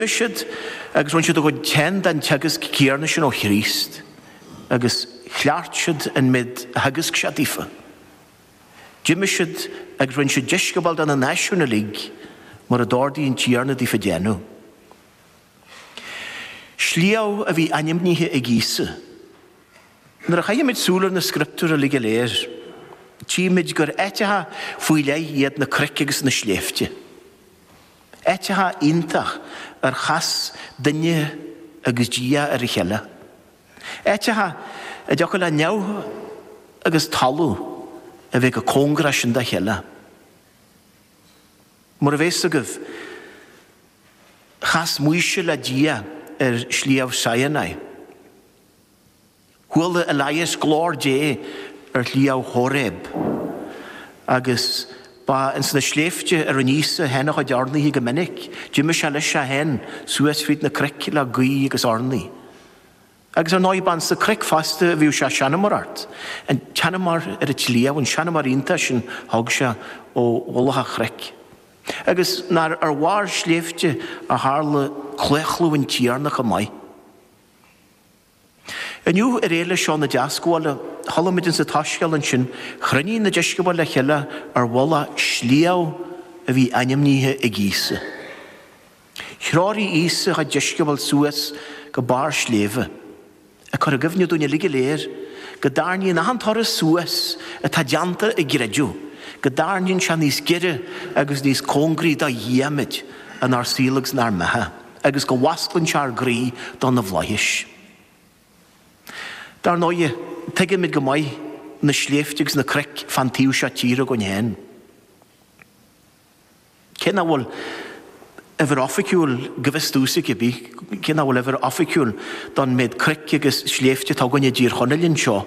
D'imigh siad agus rinne siad a gcuid féin den teagasc céarna sin ó Chríost agus chleacht siad an méid a theagasc sé daofa. D'imigh siad agus rinne siad deisceabail de na náisiúin uilig, mar a d'ordaigh an Tiarna daofa déanamh. Sliabh a bhí ainmnithe ag Íosa. Nuair a chaithimid súil ar na scrioptúir uilig go léir, tchímid gur áiteacha faoi leith iad na cnoic agus na sléibhte. Áiteacha iontach ar chas duine agus Dia ar a chéile. Áiteacha a dtiocfadh le neamh agus talamh a bheith go cóngarach sin dá cheile. Mar a bheas a fhios agaibh, chas Maoise le Dia ar Shliabh Sinai. Chuala Elias glór Dé ar Shliabh Hóreb. Agus ba ins na sléibhte a rinne Íosa féin a chuid urnaithe go minic. D'imigh sé leis é féin suas fríd na cnoic le guí agus urnaí. Agus ar ndóigh ba ins na cnoic fosta a bhíodh sé ag seanmóireacht, an tseanmóir ar an tsliabh, an seanmóir iontach sin a thug sé ó mhullach an chnoic. Agus nach ar bharr sléibhte a tharla claochlú an Tiarna chomh maith? Inniu ar Fhéile seo na Deascabhála, chuala muid insa tsoiscéal ansin, chruinnigh na deisceabail le chéile ar mhullach sliabh a bhí ainmnithe ag Íosa. Threoraigh Íosa a chuid deisceabal suas go barr sléibhe, ag cur i gcuimhne dúinn uilig go léir go dtarraingíonn achan turas suas atá déanta i gcreideamh, go dtarraingíonn sé níos giorra agus níos cóngraí do Dhia muid inár saol agus inár mbeatha. agus go bhfosclann sé ár gcroí do na bhflaithis. Dar ndóighe, tuigimid go maith na sléibhte agus na cnoic fán taobh seo tíre againn féin. Cé nach bhfuil uimhir oifigiúil, go bhfios domhsa cá bith, cé nach bhfuil uimhir oifigiúil don méid cnoic agus sléibhte atá againn i dTír Chonaill anseo,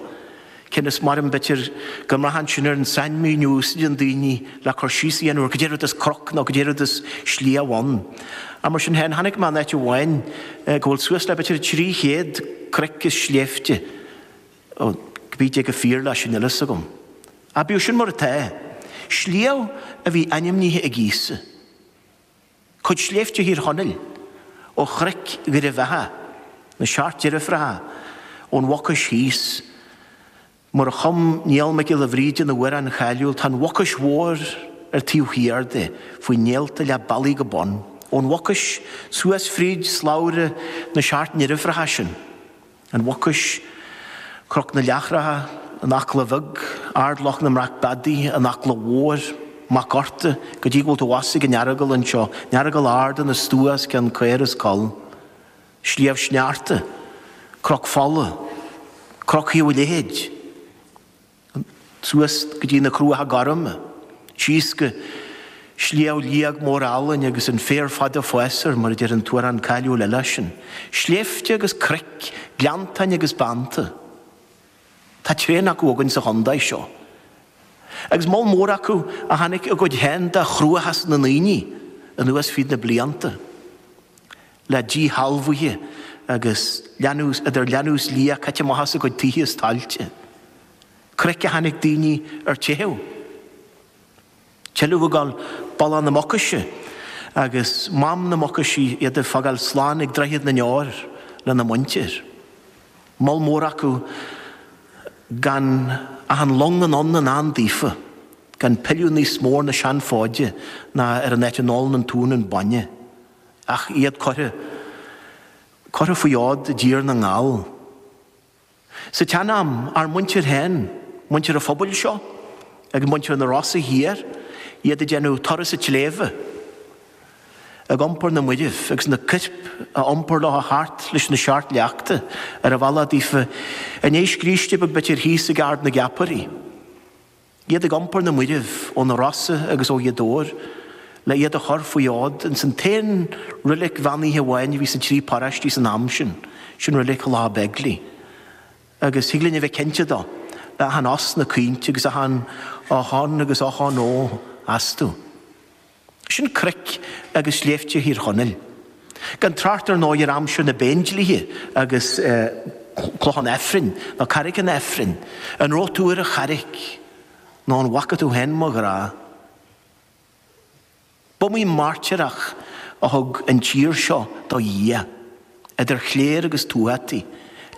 Cionn is mar an b'fhéidir go mbraitheann sin ar an sainmhíniú a úsáideann daoine le cur síos a dhéanamh ar caidé rud is cnoc nó caidé rud is sliabh ann. Ach mar sin féin, chonaic mé in áit amháin go bhfuil suas le b'fhéidir trí chéad cnoic is sléibhte, cá bith caidé chomh fíor leis sin níl a fhios agam. Ach bíodh sin mar atá, sliabh a bhí ainmnithe ag Íosa. cuid sléibhte Thír Chonaill, ó chnoic Dhoire Bheatha, na Seacht Deirfiúracha, ón Mhucais thíos. Mar a chum Niall Mac Giolla Bhríde ina amhrán cháiliúil, tá an Mhucais Mhór ar taobh thiar de, faoi néalta leath bealaigh go bun. Ón Mhucais suas fríd slabhra na Seacht nDeirfiúracha sin. An Mhucais, Cnoc na Leargacha, An Eachla Bheag, Ard Loch na mBreac Beadaí, An Eachla Mhór, Mac Uchta, go dtí go bhfuil tú abhus ag an Earagail anseo, an Earagail Ard ina stua os cionn caor is coll, Sliabh Sneachta, Cnoc Fola, Cnoc Thaobh an Leithid. suas go dtí na Cruacha Gorma, síos go Sliabh Liag Mór Álainn agus an féar fada ag fás air, mar a deir an t-amhrán cáiliúil eile sin. Sléibhte agus cnoic, gleanntáin agus bánta. Tá tréan acu againn sa chontae seo. Agus moll mór acu a chonaic a gcuid féin de chruachás na ndaoine anuas fríd na blianta. le díshealbhuithe agus lean, idir leanbh is liath caite amach as a gcuid tithe is tailte. Cnoic a chonaic daoine ar teitheadh. Tuilleadh ag gabháil bealach na Mucaise agus Mám na Mucaise, iad ag fágáil slán ag Droichead na nDeor lena muintir. Moll mór acu gan ach an long anonn i ndán daofa, gan pilleadh níos mó ar na seanfhóide ná ar an áit a n-ólann an t-uan an bainne. ach iad curtha. curtha faoi fhód i dTír na nGall. Sa tsean-am, ár muintir féin, muintir an phobail seo, agus muintir na Rosa thiar, iad ag déanamh turas an tsléibhe, ag iompar na mairbh agus na coirp a iompar leo thart leis na seacht leachta ar an bhealach daofa, ag déanamh scríste beag b'fhéidir thíos ag Ard na gCeapairí. Iad ag iompar na mairbh ó na Rosa agus ó Ghaoth Dobhair le iad a chur faoi fhód ins an t-aon roilig bheannaithe amháin a bhí sa trí paráistí san am sin, sin roilig Thulacha Beigile. Agus thig linn a bheith cinnte dó, le achan osna caointe agus achan ochón agus ochón ó astu. Sin cnoic agus sléibhte Thír Chonaill. Gan trácht ar ndóigh ar aimsir na bPéindlíthe agus Cloch an Aifrinn, nó Carraig an Aifrinn. An raibh tú ar an Charraig? Nó an bhfaca tú féin mo ghrá? B'iomaí mairtíreach a thug an tír seo do Dhia, idir chléir agus tuataí,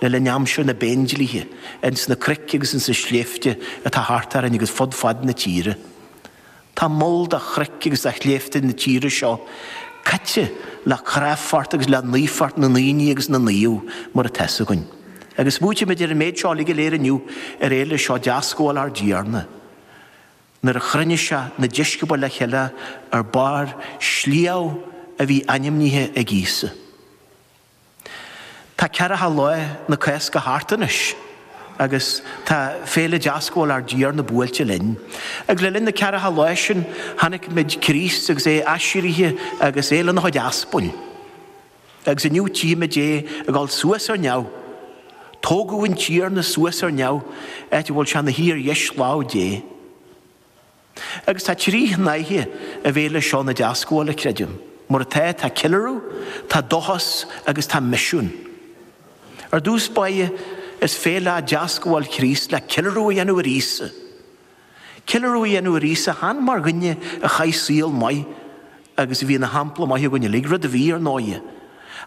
le linn aimsir na bPéindlíthe, ins na cnoic agus ins na sléibhte atá thart orainn agus fud fad na tíre. Tá moll de chnoic agus de shléibhte na tíre seo caite le cráifeacht agus le naofeacht na ndaoine agus na naomh, mar atá 'fhios againn. Agus smaoitímid ar an méid seo uilig go léir inniu ar Fhéile seo Deascabhála ár dTiarna, nuair a chruinnigh sé na deisceabail le chéile ar bharr sliabh a bhí ainmnithe ag Íosa. Tá ceathracha lá na Cásca thart anois agus tá Féile Deascabháil ár dTiarna buailte linn. Agus le linn na ceathracha lá sin chonaic muid Críost agus é aiséirithe agus é lena chuid aspail. Agus inniu tchímid é ag dul suas ar neamh. Tógadh an Tiarna suas ar neamh áit a bhfuil sé ina shuí ar dheis lámh Dé. Agus tá trí shnáithe i bhféile seo na Deascabhála, creidim. Mar atá, tá ceiliúradh, tá dóchas agus tá misiún. Ar dtús báire, is féile é Deascabháil Chríost le ceiliúradh a dhéanamh ar Íosa. Ceiliúradh a dhéanamh ar Íosa chan mar dhuine a chaith saol maith agus a bhí ina shampla maith againn uilig, rud a bhí, ar ndóighe,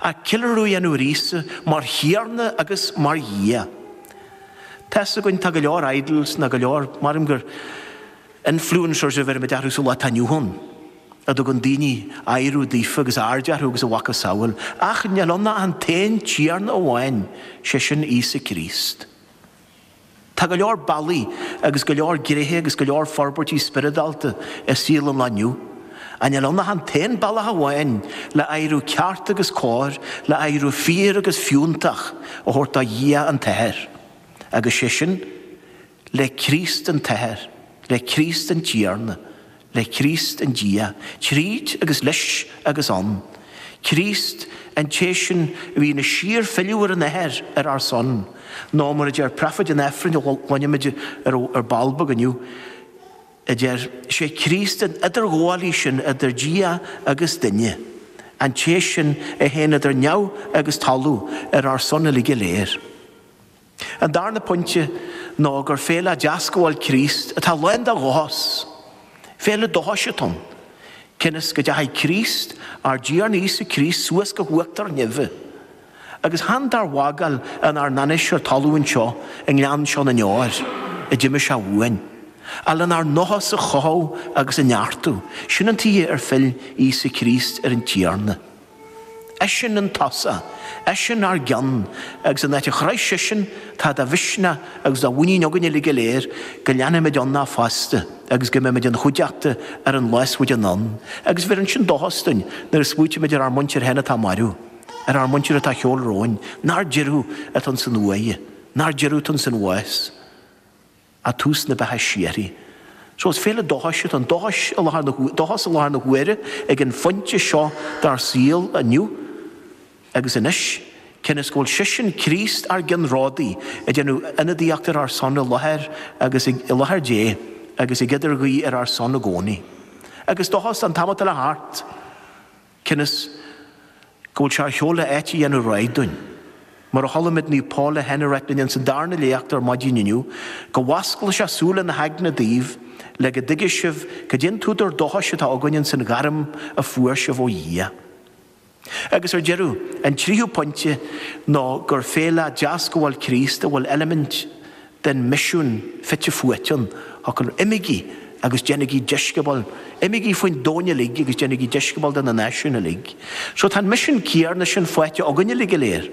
ach ceiliúradh a dhéanamh ar Íosa mar Thiarna agus mar Dhia. Tá's againn, tá go leor idols nó go leor, maram gur influencers a bheirimid orthu sa lá atá inniu ann, a dtugann daoine adhradh daofa agus aird orthu agus a mhacasamhail, ach níl ann ach an t-aon Tiarna amháin, 'sé sin Íosa Críost. Tá go leor bealaí agus go leor gréithe agus go leor forbairtí spioradálta i saol an lae inniu. Ach níl ann ach an t-aon bealach amháin le adhradh ceart agus cóir, le adhradh fíor agus fiúntach a thabhairt do Dhia an tAthair, agus sé sin le Críost an tAthair, le Críost an Tiarna, le Críost an Dia, tríd agus leis agus ann, Críost, an té sin a bhíonn ag síorphilleadh ar an Athair ar ár son, nó mar a deir Preafáid an Aifrinn a chluinfimid ar ball beag inniu, a deir, 'Is é Críost an eadarghabhálaí sin idir Dia agus duine, an té sin a théann idir neamh agus talamh ar ár son uilig go léir. An darna pointe ná gur féile Deascabháil Críost atá lán de dhóchas. Féile dóchais atá ann, cionn is go dteachaigh Críost, ár dTiarna Íosa Críost suas go huachtar neimhe, agus chan dár bhfágáil inár n-ainnise ar talamh anseo i ngleann seo na ndeor, a d'imigh sé uainn, ach lenár ndóchas a chothú agus a neartú. Sin an tuighe ar phill Íosa Críost ar an Tiarna. Eisean an tús, eisean ár gceann, agus an áit a chuaigh seisean, tá de mhisneach agus de mhuinín againn uilig go léir go leanfaimidinne fosta agus go mbeimid ina chuideachta ar an lá is faide anonn, agus bheireann sin dóchas dúinn nuair a smaoitímid ar ár muintir féin atá marbh, ar ár muintir atá ar shiúl romhainn, nár deireadh atá ins an uaigh, nár deireadh atá ins an bhás. ach tús na beatha síoraí. So is féile dóchais atá ann, dóchas i láthair na, dóchas i láthair na huaire ag an phointe seo dár saol inniu agus anois, cionn is go bhfuil sisean, Críost, ár gceannródaí, ag déanamh ionadaíocht ar ár son i láthair agus i, i láthair Dé agus ag idirghuí ar ár son i gcónaí. Agus dóchas an t-am atá le theacht. Cionn is go bhfuil sé ar shiúl le áit a dhéanamh réidh dúinn. Mar a chuala muid Naomh Pól á rá linn insan darna léacht ar maidin inniu, Go bhfosclaí sé súile na haigne daoibh, le go dtuigfidh sibh cad é an t-údar dóchais atá againn insan ghairm a fuair sibh ó Dhia. Agus ar deireadh, an tríú pointe ná gur féile deascabháil Chríost go bhfuil eilimint den misiún fite fuaite ann fosta 'Imígí agus déanaigí deisceabail', imígí faoin domhan uilig agus déanaigí deisceabail de na náisiúin uilig. So tá an misiún céanna sin faighte againn uilig go léir,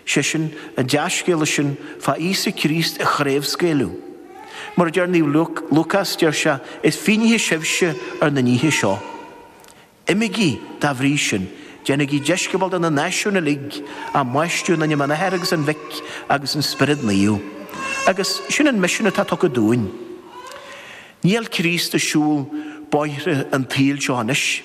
sé sin, an dea-scéala sin fá Íosa Críost a chraobhscaoileadh. Mar a deir Naomh Lúcás, deir sé, 'Is fínnithe sibhse ar na nithe seo. Imígí, dá bhrí sin, déanaigí deisceabail de na náisiúin uilig, á mbaisteadh in ainm an Athar agus an Mhic agus an Spioraid Naoimh. Agus sin an misiún atá tugtha dúinn. Níl Críost ag siúl bóithre an tsaoil seo anois,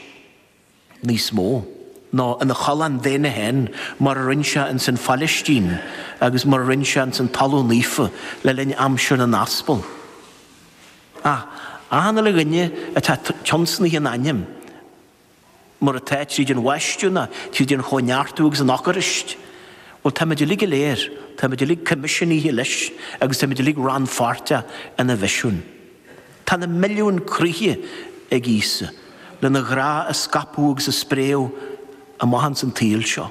níos mó, nó ina cholainn daonna féin mar a rinne sé ins an Phailistín agus mar a rinne sé ins an Talamh Naofa le linn aimsir na nAspal. Ach achan uile dhuine atá tionscnaithe in ainm, mar atá tríd an bhaisteadh ná tríd an chóineartú agus an Eocairist, bhuel táimid uilig go léir, táimid uilig coimisiúnaithe leis agus táimid uilig rannpháirteach ina mhisiún. Tá na milliúin croíthe ag Íosa lena ghrá a scaipeadh agus a spréadh amach ins an tsaol seo.